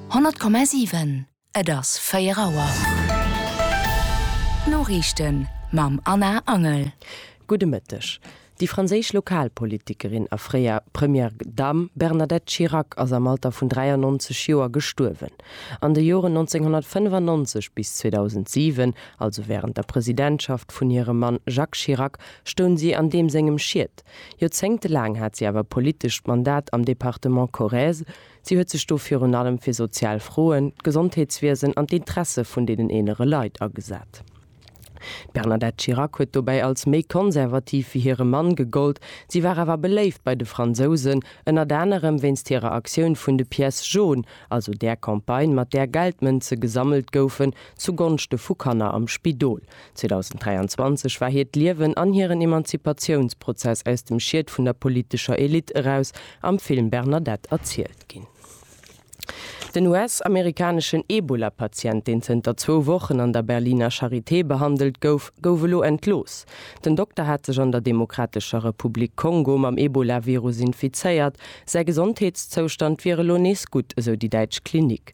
100,7, Et ass 4 Auer. D'Noriichten mam Anna Angel. Gudde Mëtteg. Déi franséisch Lokalpolitikerin a fréier Première Dame Bernadette Chirac ass am Alter vun 93 Joer gestuerwen. An de Joren 1995 bis 2007, also wärend der Presidentschaft vun hirem Mann Jacques Chirac, stoung si an deem sengem Schiet. Joerzéngte laang hat si awer e politescht Mandat am Departement Corrèze. Si huet sech do virun allem fir sozial Froen, d'Gesondheetswiesen an d'Interesse vun deenen eelere Leit agesat. D'Bernadette Chirac huet dobäi als méi konservativ wéi hire Mann gegollt. Si war awer beléift bei de Fransousen, ënnert anerem wéinst hirer Aktioun vun de Pièces jaunes, also där Campagne, mat där Geldmënze gesammelt goufen zugonschte vu Kanner am Spidol. 2023 war hiert Liewen an hiren Emanzipatiounsprozess aus dem Schiet vun der politescher Elite eraus am Film Bernadette erzielt ginn. Den US-amerikaneschen Ebola-Patient, deen zënter zwou Wochen an der Berliner Charité behandelt gouf, gouf elo entlooss. Den Dokter hat sech an der Demokratescher Republik Kongo mam Ebola-Virus infizéiert. Säi Gesondheetszoustand wier elo nees gutt, esou déi däitsch Klinik.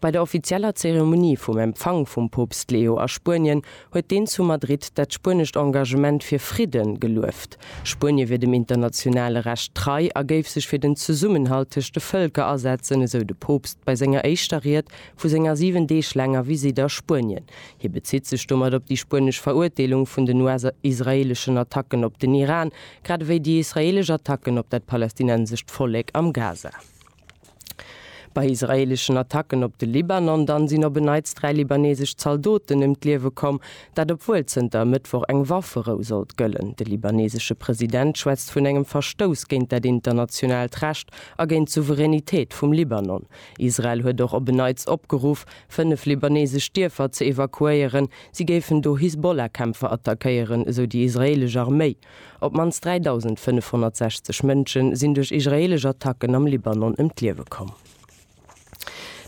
Bei der offizieller Zeremonie vum Empfang vum Poopst Leo a Spuenien huet deen zu Madrid dat spuenescht Engagement fir Fridde gelueft. Spuenie wier dem internationale Recht trei a géif sech fir den Zesummenhalt tëscht de Vëlker asetzen, esou de Poopst bei senger éischter Ried vu senger 7 Deeg laanger Visitt a Spuenien. Hie bezitt sech domat op déi spuenesch Verurteelung vun den US-israeeleschen Attacken op den Iran, grad ewéi déi israeelesch Attacken op dat palästinensescht Vollek am Gaza. Bei israeeleschen Attacken op de Libanon dann sinn op en Neits dräi libaneesesch Zaldoten ëm d'Liewe komm, dat obwuel zënter e Mëttwoch eng Wafferou sollt gëllen. De libaneesesche President schwätzt vun engem Verstouss géint dat internationaalt Recht a géint d'Souveränitéit vum Libanon. Israel huet och op en Neits opgeruff, fënnef libaneesesch Dierfer ze evakuéieren, si géifen do Hisbollah-Kämpfer attackéieren, esou déi israeelesch Arméi. Op d'mannst 3.560 Mënsche sinn duerch israeelesch Attacken am Libanon ëm d'Liewe komm.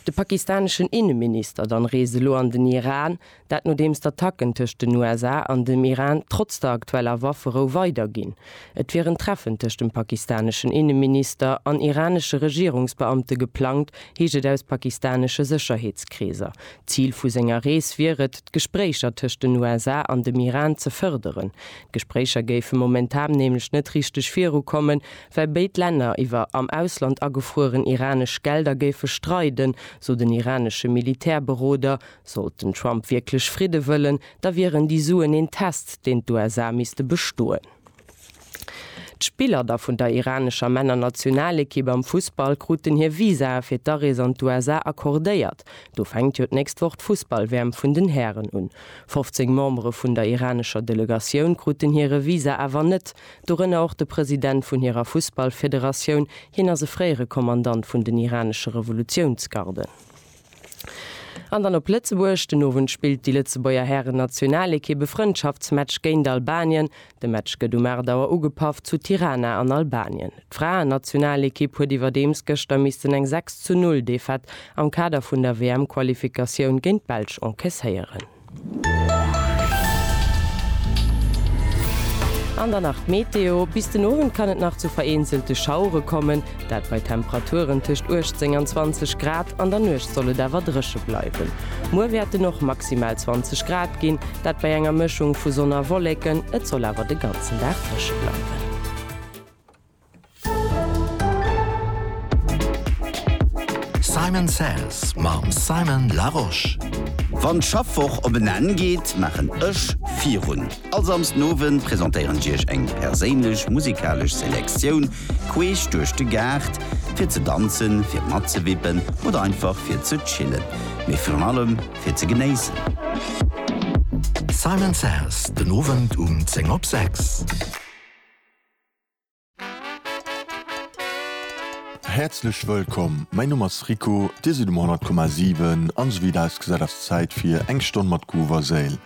De pakistaneschen Inneminister dann reest elo an den Iran, dat nodeems d'Attacken tëscht den USA an dem Iran trotz der aktueller Wafferou weider ginn. Et wier en Treffen tëscht dem pakistaneschen Inneminister an iranesche Regierungsbeamte geplangt, heescht et aus pakistanesche Sécherheetskreeser. D'Zil vu senger Rees wier et, d'Gespréicher tëscht den USA an dem Iran ze fërderen. D'Gespréicher géife momentan nämlech net richteg viru kommen, well béid Länner iwwer am Ausland agefrueren iranesch Gelder géife streiden, sou den iranesche Militärberoder. Sollt den Trump wierklech Fridde wëllen, da wieren déi Suen een Test, deen d'USA misste bestoen. D'Spiller da vun der iranescher Männer-Nationalekipp am Fussball kruten hir Visae fir d'Arees an d'USA accordéiert. Do fänkt jo d'nächst Woch d'Fussball-WM vun den Hären un. 15 Membere vun der iranescher Delegatioun kruten hire Visa awer net, dorënner och de President vun hirer Fussballfederatioun. Hien ass e fréiere Kommandant vun den iranesche Revolutiounsgarden. An dann op Lëtzebuerg, Den Owend spillt déi Lëtzebuerger Hären-Nationalekipp e Frëndschaftsmatch géint Albanien. De Match gëtt um 8 Auer ugepaff zu Tirana an Albanien. D'Fraen-Nationalekipp huet iwwerdeems gëschter missten eng 6 zu 0 Defaite am Kader vun der WM-Qualifikatioun géint d'Belsch enkesséieren. An dann nach d'Meteo, Bis den Owend kann et nach zu vereenzelte Schauere kommen, Dat bei Temperaturen tëscht 18 an 20 Grad. An der Nuecht soll et awer dréche bleiwen. Muer wäert en och maximal 20 Grad ginn, dat bei enger Mëschung vu Sonn a Wolleken. Et soll awer de ganzen Dag dréche bleiwen. Simon Says mam Simon Larosche. Wann d'Schaffwoch op en Enn geet, maachen ech virun. All Samsdenowend presentéieren ech iech eng perséinlech musikalesch Selektioun queesch duerch de Gaart, fir ze danzen, fir matzewippen oder einfach fir ze chillen, mee virun allem fir ze genéissen. Simon Says, den Owend um 10 op 6. Häerzlech wëllkomm, mäin Numm ass Rico, dir sidd um 100,7 an esou wéi et ausgesäit ass d'Zäit fir eng Stonn mat Groove a Séil.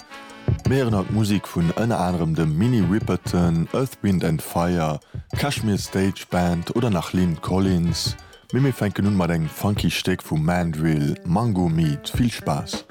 Mir héieren haut Musek vun ënner anerem dem Minnie Riperton, Earth, Wind and Fire, Kashmir Stage Band oder nach Lyn Collins, mee mir fänken un mat engem funky Stéck vum Mandrill, Mango Meat. Vill Spaass!